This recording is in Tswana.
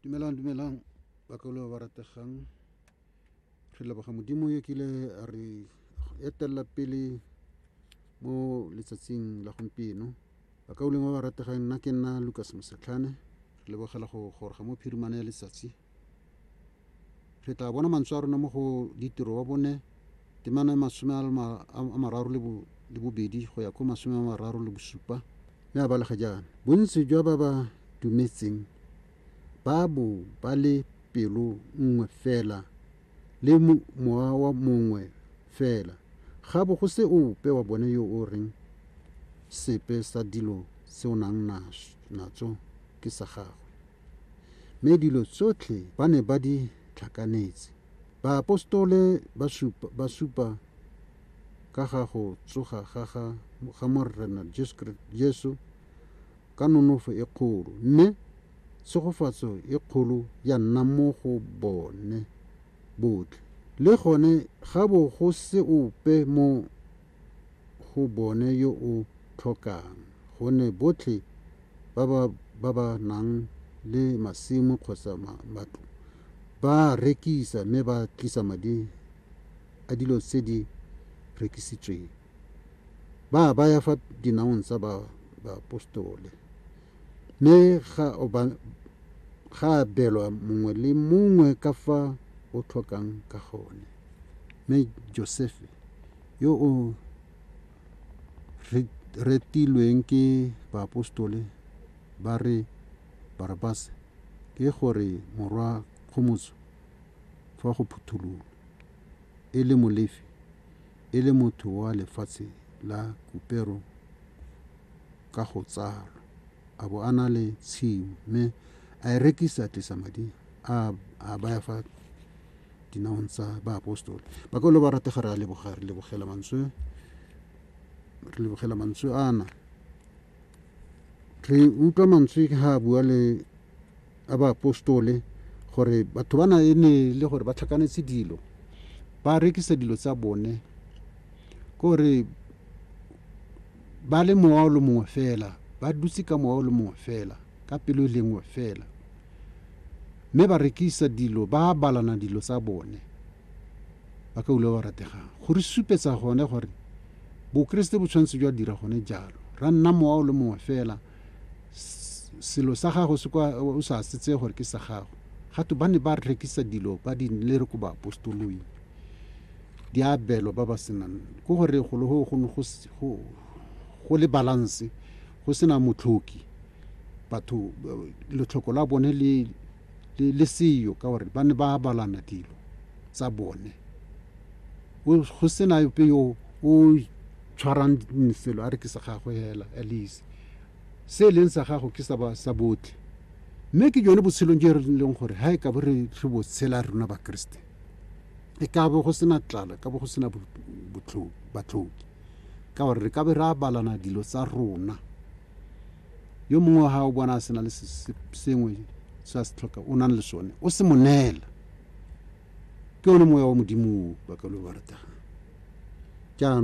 dumelang dumelang bakalo ba rategang re leboga modimo yo kile a re etelela pele mo letsatsing la gompieno bakauleng ba ba rategang nna ke nna lucas mosetlhane re lebogela go goroga mo phirimana ya letsatsi Re tla bona mantswe a rona mo go Ditiro wa bone, temana ya masome a le ma- a a mararo le bo- le bobedi go ya ko masome a mararo le bosupa, mme a balega jaana, Bontsi jwa ba ba dumetseng ba bo ba le pelo nngwe fela le mo- mowa wa mongwe fela, ga bo go se ope wa bone yo o reng, Sepe sa dilo tse o nang nas- natso ke sa gagwe. Mme dilo tsotlhe ba ne ba di tlhakanetse. Baapostole ba supa ka ga go tsoga ga ga ga Morena Jesu ka nonofo e kgolo, mme tshegofatso e kgolo ya nna mo go bone botlhe. Le gone ga bo go se ope mo go bone yo o tlhokang, gonne botlhe ba ba ba ba nang le masimo kgotsa matlo ba rekisa mme ba tlisa madi a dilo tse di rekisitsweng. Ba a baya fa dinaong tsa ba baapostole. Mme ga o ba ga abelwa mongwe le mongwe ka fa o tlhokang ka gone. Mme Josefe yo o re retilweng ke baaposetole ba re Barabase ke gore morwa kgomotso fa go phutholola, e le Molefi, e le motho wa lefatshe la Kupero ka go tsalwa, a bo a na le tshimo mme a e rekisa a tlisa madi a a baya fa dinaong tsa baapostola ba ka lo ba ratega re a leboga re lebogela mantswe re lebogela mantswe ana re utlwa mantswe ga a bua le a baapostole gore batho ba na e ne e le gore ba tlhakanetse dilo ba rekisa dilo tsa bone kore ba le mowa o le mongwe fela ba dutse ka mowa o le mongwe fela ka pelo e lengwe fela mme ba rekisa dilo, ba abalana dilo tsa bone, ba ka ulo ba rategang. Go re supetsa gone gore Bokeresete bo tshwanetse jwa dira gone jalo. Ra nna mowa o le mongwe fela, selo sa gago se kwa, o sa se tseye gore ke sa gago. Ga twe ba ne ba rekisa dilo ba di lere ko baapostoloi, di abelwa ba ba senang. Ke gore golo go ne go le balance, go sena motlhoki, batho letlhoko la bone le le, le seyo ka gore ba ne ba abalana dilo tsa bone go sena yope yo o tshwarang selo a re ke sa gagwe hela at least se e leng sa gago ke sa ba sa botlhe mme ke jone botshelong jo re leng gore ha e ka bo re tlho botshela rona bakeresete e ka bo go sena tlala ka bo go sena batlhoki ka gore re ka be re abalana dilo tsa rona yo mongwe wa gago bona a sena le sengwe se a se tlhoka o nang le sone o se monela ke one moya wa modimo o ba ka lo ba ratega jaanong